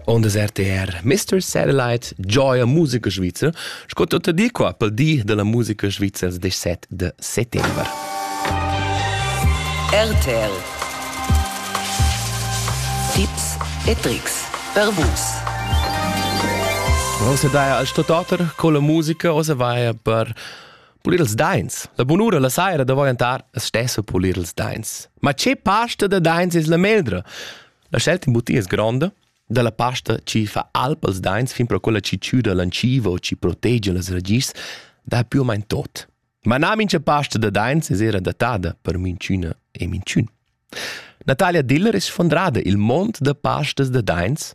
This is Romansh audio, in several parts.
On des RTR Mr. Satellite Joya musica svizzer sco tutta di qua pel di della musica svizzer 17 de settembre. RTL Tipps e Tricks per vus. Bon, se daja al stototer con la musica o se vaja per Pulir ils dains. La bunura la saira davorentar es stessa pulir ils dains. Ma che pasta da dains es la meldra? La scelta in butia es gronda, dalla pasta chi fa alp als dains fin pro quella chi chüda l'anciva o chi protegia las ragischs, dà più o main tot. Ma na mincha pasta da dains es era datada per minchüna e minchün. Natalia Diller es sfondrada il mond da pastas da dains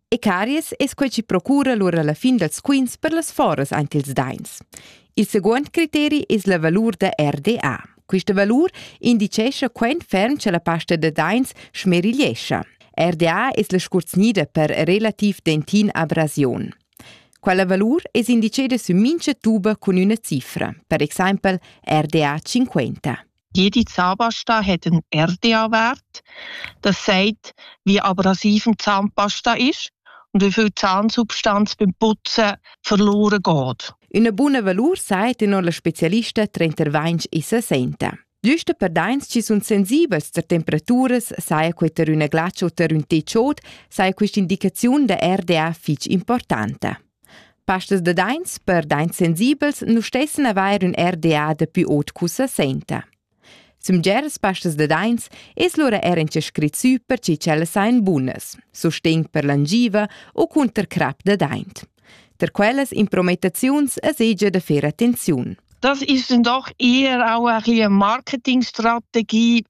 E caries es quai chi procura lur a la fin dals quints per las foras aint ils dains. Il seguond criteri es la valur da RDA. Questa valur indicescha quant ferm cha la pasta da dains schmerigliescha. RDA es la scurzgnida per relativ dentin abrasiun. Quella valur es indiceda sü mincha tuba cun üna cifra, per exaimpel RDA 50. Jedi Zahnpasta hat einen RDA-Wert. Das sagt, wie abrasiv eine Zahnpasta ist und wie viel Zahnsubstanz beim Putzen verloren geht. Una buna valur sagt non la specialista trenter vains issa senta. Giusto per dains ci sun sensibels ter temperaturas, saja quei ter üna glatscha o ter ün techot, saja questa indicaziun da RDA fich importante. Pastas da daints per daints sensibels nu stessan avair ün RDA dapi ot cussa sainta. Sumgeras pastas da daints es lura eir incha scrit sü per chi ch'ellas sajan bunas, sustegn per l'angiva u cunter crap da daint. Tar quellas imprometaziuns es egia da fer attenziun. Das ist dann doch eher auch eine Marketingstrategie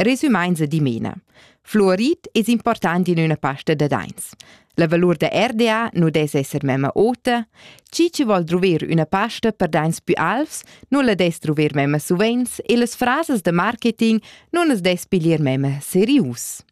Resumaints e dimena. Fluorit es important in üna pasta da daints. La valur da RDA nu dess esser memma ota. Chi chi vol druver üna pasta per daints pü alvs, nu la dess druver memma suvenz e las frasas da marketing nun as dess piglier memma serius.